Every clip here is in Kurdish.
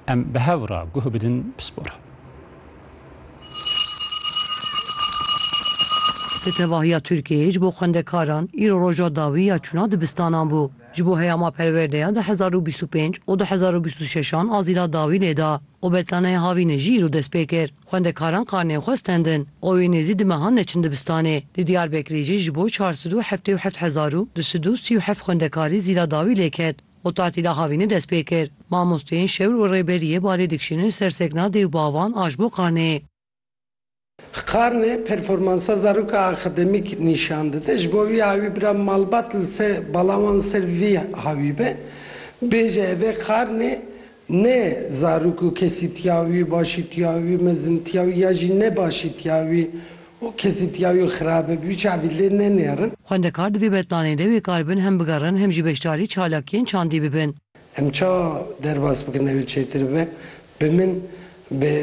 Em bi hev re guh bidin pispor. Di tevahiya Tirkiyeyê ji bo xwendekaran îro roja dawî ya çûna dibistanan bû. Ji bo heyama perwerdeya di hezar û bîst û pênc û du hezar û bîst û şeş an azîla dawî lê da û betlaneya havînê jî îro dest pê kir. Xwendekaran karneyên xwe stendin û wê nêzî di mehan neçin dibistanê. Di Diyarbekirê jî ji bo çar sed û heftê û heft hezar û du sed û sî û heft xwendekarî zîla dawî lê ket. Xûtatî daxavînê dest pê kir. Mamosteyên şewr û rêberiyê balê dikişînin li ser sekna dê û bavan a ji bo karnê. Karnê performansa zaroka akademîk nîşan dide. Ji bo wî awî bira malbat li ser bala wan li ser vî hawî be. Bêje ev e karnê Ne zarok û kesîtiya wî, başîtiya wî, mezintiya wî ya jî ne başîtiya wî û kesîtiya wî xirab e, bi wî çavî lê nenêrin. Xwendekar divê berplanên de wê kar bin hem bigerin hem jî beşdarî çalakiyên çandî bibin. Em ça derbas bikin ew ê çêtir bibe? Bi min. Bi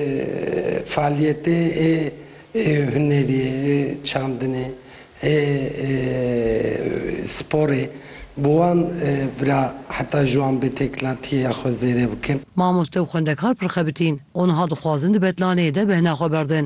faaliyetê ê hunerî, ê çandinê, ê sporê bi wan bira heta ji wan bêtekilatîyeya xwe zêde bikin. Mamoste û xwendekar pir xebitîn û niha dixwazin di betlaneyê de bêhna xwe berdin.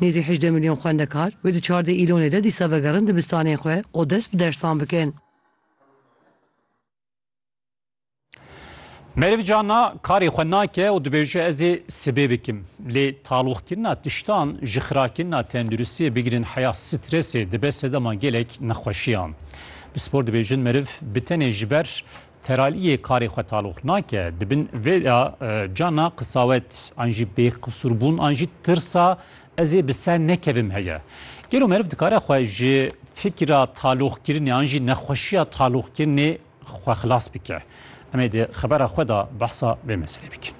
Nêzî hejdeh milyon xwendekar wê di çardeh îlonê de dîsa vegerin dibistanên xwe û dest bi dersan bikin. Meriv Cana karê xwe nake û dibêje ez ê sibê bikim. Lê taloqkirina tiştan ji xirakirina tenduristiyê bigirin heya stresê dibe sedema gelek nexweşiyan. Bi spor dibêjin meriv bi tenê ji ber Teraliyê karê xwe taloq nake, dibin vê de ca na qisawet an jî bêqisûrbûn an jî tirsa ez ê bi ser nekevim heye. Gelo meriv dikare xwe ji fikira taloqkirinê an jî nexweşiya taloqkirinê xwe xilas bike? Em ê di xebera xwe de behsa vê meselê bikin.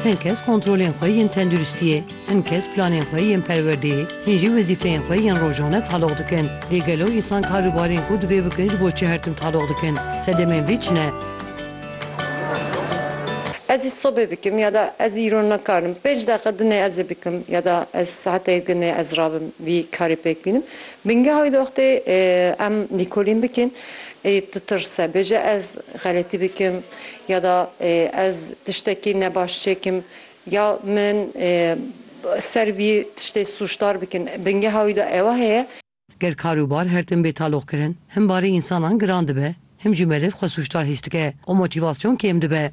Hin kes kontrolên xwe yên tenduristiyê, hin kes planên xwe yên perwerdeyê, hin jî wezîfeyên xwe yên rojane taloq dikin. Lê gelo însan karûbarên ku divê bikin ji bo çi her tim taloq dikin? Sedemên vê çi ne? Ez ê sobê bikim ya da ez îro nikarim. Pênc deqe din ê ez ê bikim ya da ez saeteyê din ê ez rabim vî karê pêk bînim. Bingeha wî doxtê em lîkolîn bikin ê ditirse, bêje ez xeletî bikim ya da ez tiştekî ne baş çêkim ya min ser wî tiştê sûcdar bikin. Bingeha wî de ewa heye. Ger kar û bar her tim bê taloqkirin, him barê însanan giran dibe, him jî meriv xwe sûcdar hîs dike û motîvasyon kêm dibe.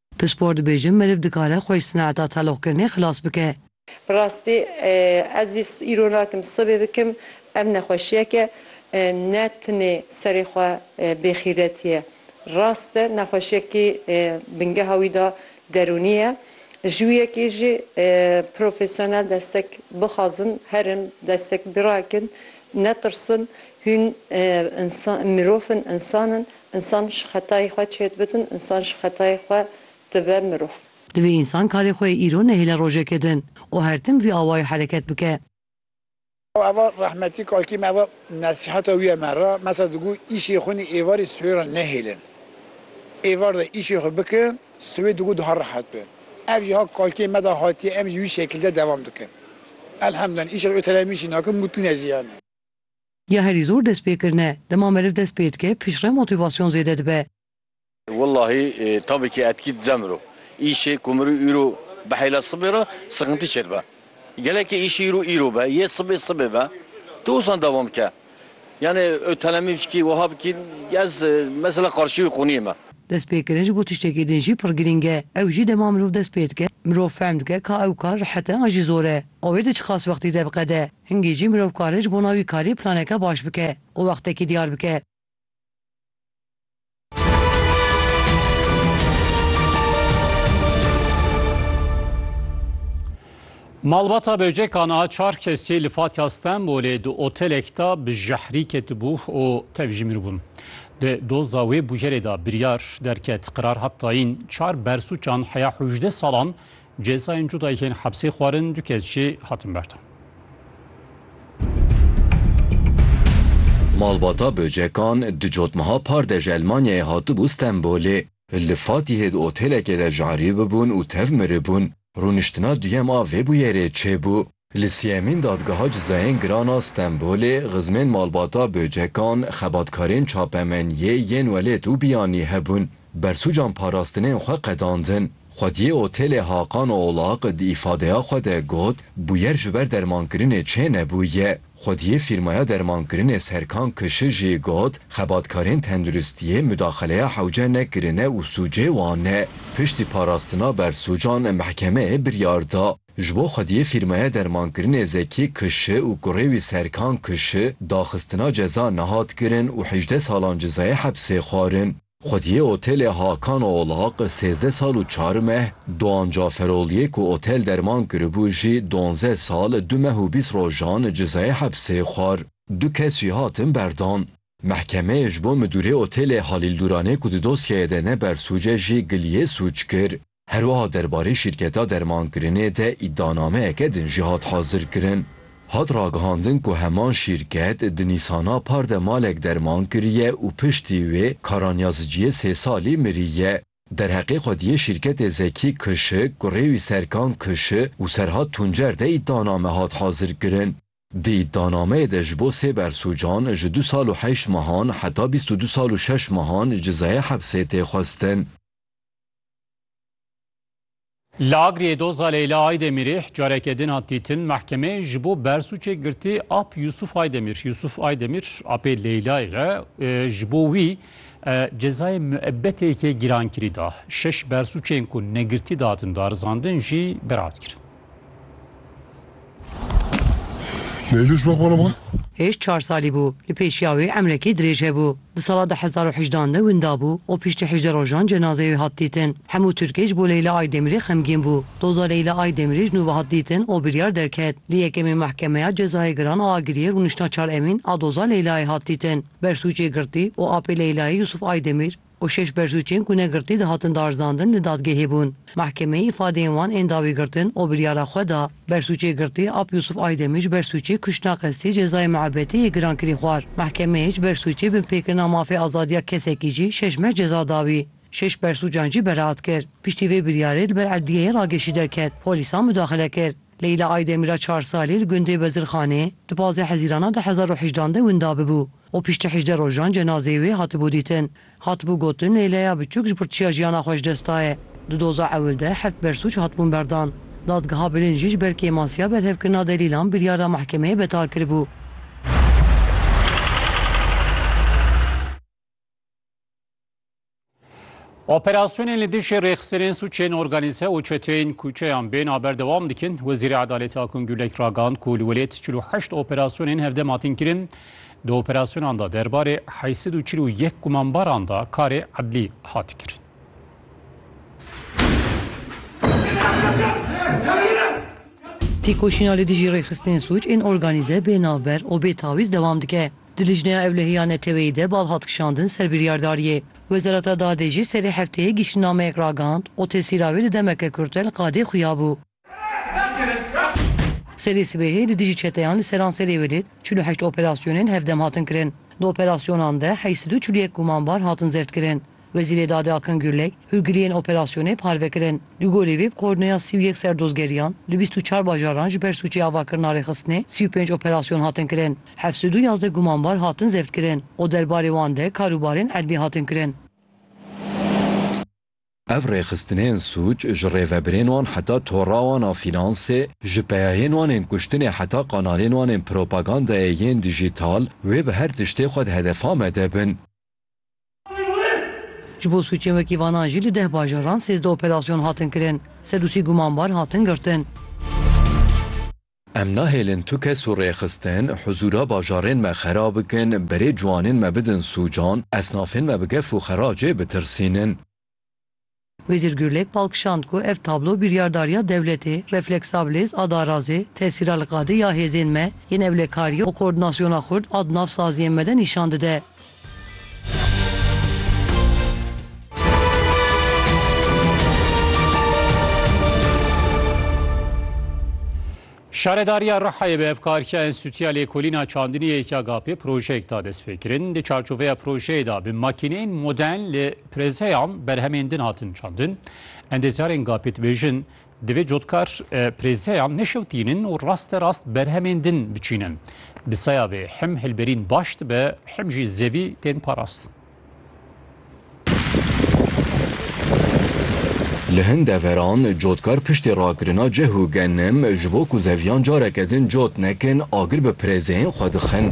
Pispor dibêjin meriv dikare xwe ji sinaheta teloqkirinê xilas bike. Bi rastî ez yê îro nakim sibê bikim. Ev nexweşiyek e ne tinê serê xwe bêxîretî ye. Rast e nexweşiyekî bingeha wî de derûnî ye. Ji wî yekê jî profesyonel destek bixwazin, herin destek birakin, netirsin. Hûn insan mirov in, insan in. Însan ji xetayê xwe çêdibidin, însan ji xetayê xwe dibe mirov. Divê însan karê xwe yê îro nehêle rojekê din û her tim vî awayî hereket bike. Ava rehmetî kalkî me ava nesîheta wî ye me re, mesela digo îşê xwe nê êvarê siwê re nehêlin. Êvar de îşê xwe bike, siwê digo daha rehet be. Ev jî ha kalkê me de hatiye em jî wî şekil de dewam dikin. Elhemdullah îşên otelemîşî nakin mutlu ne jî yanî. Ya herî zor dest pê kirin e. Dema meriv dest pê dike piştre motîvasyon zêde dibe. Wellahî tabî kî etkî dide miro. Îşê ku miro îro bihêle sibê re sixintî çêdibe. Gelekî îşê îro îro be yê sibê sibê be tu ûsan dewam bike. Yanî ew telemî bişkî wiha bikî ez mesela qarşî wî qûniyê me. Dest pê kirin ji bo tiştekî din jî pir girîng e. Ew jî dema mirov dest pê dike mirov fehm dike ka ew kar rehet e an jî zor e. Avê di çiqas wextî derqede. Hingî jî mirov kare ji bona wî karî planeke baş bike û wextekî diyar bike. Malbata Böceka niha çar kesî li Fatiya Stenbolê di otelek de bi jehrî ketibû û tev jî miribûn. Di doza wê bûyerê de biryar derket qirar hat dayîn çar bersûçan heya hewjdeh salan Cezayên cuda yên hepsê xwarin du kes jî hatin berdan. Malbata Böcekan di cotmeha par de ji Elmanyayê hatibû Stenbolê. Li Fatîhê di otêlekê de ji erî bibûn û tev miribûn. Rûniştina duyem a vê bûyerê çêbû. Li sêyemîn dadgeha cezayên giran a Stenbolê xizmên malbata Böcekan, xebatkarên çapemeniyê yên welêt û biyanî hebûn, bersûcan parastinên xwe qedandin. Xwediyê Otêlê Hakan Oğlak di îfadeya xwe de got, Bûyer ji ber dermankirinê çê nebûye. Xwediyê fîrmaya dermankirinê Serkan Kişi jî got, Xebatkarên tenduristiyê mudaxeleya hewce nekirine û sûcê wan e. Piştî parastina bersûcan mehkemeyê biryar da. Ji bo xwediyê fîrmaya dermankirinê Zekî KŞ û kurê wî Serkan KŞ daxistina ceza nehat kirin û hejdeh salan cezayê hepsê xwarin. Xwediyê otelê Hakan Olaq sêzdeh sal û çar meh, Doğan Caferogliyê ku otel derman kiribû jî donzdeh sal du meh û bîst rojan cezayê hepsê xwar. Du kes jî hatin berdan. Mehkemeyê ji bo midûrê otelê Halîl Dûranê ku di dosyayê de ne bersûc e jî giliyê sûc kir. Herwiha derbarê şîrketa dermankirinê de îdianameyeke din jî hat hazirkirin. Hat ragihandin ku heman şîrket di nîsana par de malek derman kiriye û piştî wê Karanyaziciyê sê salî miriye. Derheqê xwediyê şîrketê Zekî Kişi, kurê wî Serkan Kişi û Serhat Tuncer de îdianame hat hazirkirin. Di îdianameyê de ji bo sê bersucan ji du sal û heşt mehan heta bîst û du sal û şeş mehan cezayê hepsê tê xwestin. Li Agiriyê doza Leyla Aydemirih careke din hat dîtin. Mehkemeyê ji bo bersuçê girtî ap Yusuf Aydemir. Yusuf Aydemir apê Leylayê ye. Ji bo wî cezayê müebbetêkê gîrankirî da. Şeş bersuçên ku negirtî datin darizandin jî berat kirin. Neyluş bak bana bak. Hêj çar salî bû. Li pêşiya wê emrekî dirêj hebû. Di sala du hezar û hejdeh an de winda bû û piştî hejdeh rojan cenazeyê wê hat dîtin. Hemû Tirkê ji bo Leyla Aydemirê xemgîn bû. Doza Leyla Aydemirê ji nû ve hat dîtin û biryar derket. Li yekemê Mehkemeya Cezayê Giran a Agiriyê rûniştna çar Emîn a doza Leylayê hat dîtin. Bersûcê girtî û apê Leylayê Yûsûf Aydemîr, û şeş bersûcên ku ne girtî dihatin darizandin li dadgehê bûn. Mehkemeyê îfadeyên wan ên dawî girtin û biryara xwe da. Bersûcê girtî Ap Yûsûf Aydemî ji bersûcê kuştina qestî cezayê miebetê yê giran kirî xwar. Mehkemeyê ji bersûcê binpêkirina mafê azadiya kesekî jî şeş meh ceza da wî. Şeş bersûcan jî beraat kir. Piştî vê biryarê li ber edliyeyê ragêşî derket. Polîsan mudaxile kir. Leyla Aydemîra çar salî li gundê Bezirxanê di pazdeh hezîrana du hezar û hejdan de winda bibû. û piştî hejdeh rojan cenazeyê wê hatibû dîtin. Hatibû gotin Leyleya biçûk ji ber çiya jiyana xwe ji dest daye. Di doza ewil de heft bersûc hatibûn berdan. Dadgeha Bilin jî ji ber kêmasiya berhevkirina delîlan biryara mehkemeyê betal kiribû. Operasyonên li dijî rêxistinên sûçên organîze û çeteyên kûçeyan bên a berdewam dikin. Wezîrê Edaletê Akun Gulek ragihand ku li welêt çil û heşt operasyonên hevdem hatin kirin. Di operasyonan de derbarê heyî sed û çil û yek gumanbaran de karê edlî hat kirin. Têkoşîna li dijî rêxistinên sûc ên organîze bê navber û bê tawîz dewam dike. Di lijneya ewlehî ya neteweyî de bal hat kişandin ser biryardariyê. Wezareta Dadê jî serê hefteyê giştînnameyek ragihand û tesîra wê di demeke kurte li qadê xuya bû. Serê sibehê li dijî çeteyan li seranserê welêt çil û heşt operasyonên hevdem hatin kirin. Di operasyonan de heşt sed û çil û yek gumanbar hatin zevtkirin. Wezîrê Dadê Akin Gurlek, hûrgiliyên operasyonê parve kirin. Li gorî wê bi koordîneya sî û yek serdozgeriyan li bîst û çar bajaran ji ber sûcê avakirina rêxistinê sî û pênc operasyon hatin kirin. Heft sed û yazdeh gumanbar hatin zevtkirin û derbarê wan de karûbarên edlî hatin kirin. Ev rêxistinên sûc ji rêvebirên wan heta tora wan a fînansê, ji peyahên wan ên kuştinê heta kanalên wan ên propagandayê yên dijîtal wê bi her tiştê xwe di hedefa me de bin. Ji bo sûcên wekî vanan jî li deh bajaran sêzdeh operasyon hatin kirin. Sed û sî gumanbar hatin girtin. Em nahêlin tu kes û rêxistin huzûra bajarên me xera bikin, berê ciwanên me bidin sûcan, esnafên me bi gef û xeracê bitirsînin. Wezîr Gurlek bal kişand ku ev tablo biryardariya dewletê, refleksabilis a darazê, tesîra li qadê ya hêzên me yên ewlekariyê û koordinasyona xurt a di nav saziyên me de nîşan dide. Şaredariya Rihayê bi hevkariya Enstîtuya Lêkolîna Çandinî yê YKGAP'ê projeyek da destpêkirin. Di çarçoveya projeyê de bi makîneyên modern li prêzeyan berhemên din hatin çandin. Endeziyarên GAP'ê dibêjin, divê cotkar prêzeyan neşewtînin û rasterast berhemên din biçînin. Bi saya vê him hilberîn baş dibe him jî zevî tên parastin. Li hin deveran cotkar piştî rakirina cih û genim ji bo ku zeviyan careke din cot nekin agir bi pirêzeyên xwe dixin.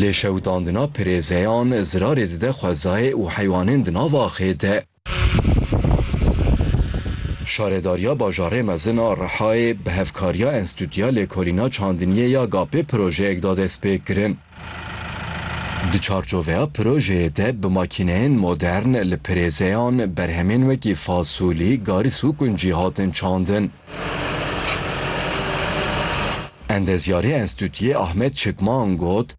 Lê şewitandina pirêzeyan zirarê dide xwezayê û heywanên di nav axê de. Şaredariya Bajarê Mezin a Rihayê bi hevkariya Enstîtuya Lêkolîna Çandiniyê ya GAP'ê projeyek da destpêkirin. Di çarçoveya projeyê de bi makîneyên modern li pirêzeyan berhemên wekî fasolî, garis û kuncî hatin çandin. Endezyarê Enstîtuyê Ahmet Çikman got,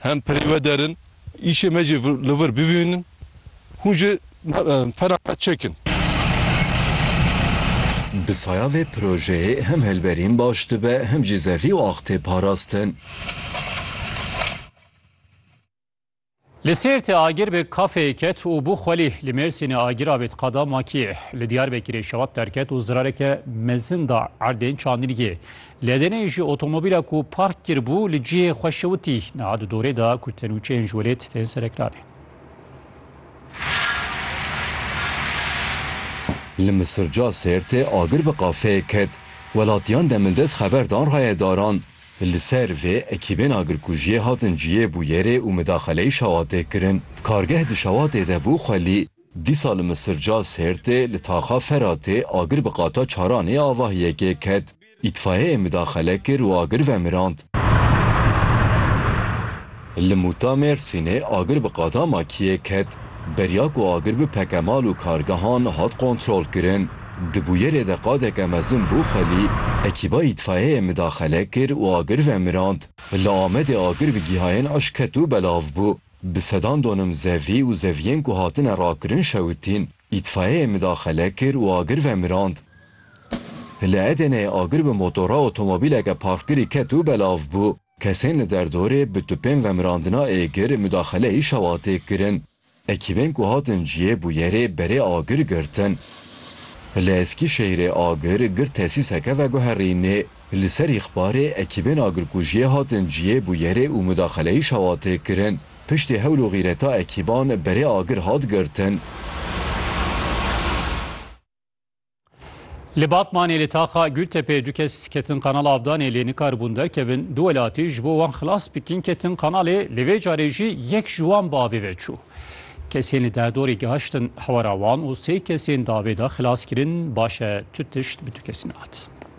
hem pirê we der in. Îşê me jî li vir bibînin, hûn jî fenaxet çekin. Bi saya vê projeyê hem hilberîn baş dibe hem jî zevî û ax tê parastin. Li Sêrtê agir bi kafeyê ket û bû xwelî. Li Mêrsînê agir avêt qada Makiyê. Li Diyarbekirê şewat derket û zirareke mezin da erdên çandîniyê. Li Edeneyê jî otomobîla ku park kiribû li cihê xwe şewitî. Niha di dorê de ku tenûçeyên ji welêt tên sereklanê. Li Misirca Sêrtê agir bi qafeyê ket. Welatiyan demildest xeber dan rayedaran. Li ser vê ekîbên agirkujiyê hatin cihê bûyerê û midaxeleyî şewatê kirin. Kargeh di şewatê de bû xwelî. Dîsa li Misirca Sêrtê li taxa Feratê agir bi qata çaran ê avahiyê kê ket. Îtfayeyê midaxele kir û agir vemirand. Li Mûta Mêrsînê agir bi qata makiyê ket. Beriya ku agir bipeke mal û kargehan hat kontrolkirin. Di bûyerê de qadeke mezin bû xwelî. Ekîba îtfayeyê midaxele kir û agir vemirand. Li Amedê agir bi gihayên ij ket û belav bû. Bi sedan donim zevî û zeviyên ku hatine rakirin şewitîn. Îtfayeyê midaxele kir û agir vemirand. Li Edeneyê agir bi motora otomobîleke parkkirî ket û belav bû. Kesên li derdorê bi tupên vemirandina êgir midaxeleyî şewatê kirin. Ekîbên ku hatin cihê bûyerê berê agir girtin. Li Eskîşehîrê agir girt tesîseke veguherînê. Li ser îxbarê ekîbên agirkujiyê hatin cihê bûyerê û mudaxeleyî şawa tê kirin. Piştî hewl û xîreta ekîban berê agir hat girtin. Li Batmanê li taxa Gultepeyê du kes ketin Kanala Avdanê lê nikaribûn derkevin. Du welatî ji bo wan xilas bikin ketin kanalê lê vê carê jî yek ji wan bi avê ve çû. Kesên li derdorê gihiştin hewara wan û sê kesên di avê de xilas kirin. Baş e tu tişt bi tu kesî nehat.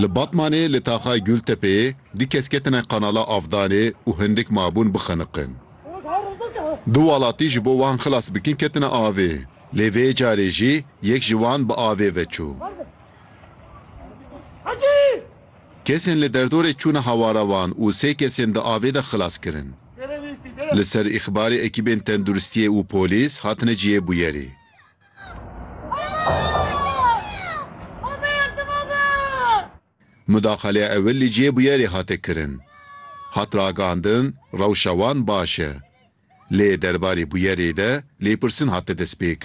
Li Batmanê li taxa Gultepeyê du kes ketine Kanala Avdanê û hindik mabûn bixeniqin. Du welatî ji bo wan xilas bikin ketine avê, lê vê carê jî yek ji wan bi avê ve çû. Kesên li derdorê çûne hawara wan û sê kesên di avê de xilas kirin. Li ser îxbarê ekîbên tenduristiyê û polîs hatine cihê bûyerê. Mudaxaleya ewil li cihê bûyerê hate kirin. Hat ragihandin rewşa wan baş e. Lê derbarê bûyerê de lêpirsîn hate destpêkirin.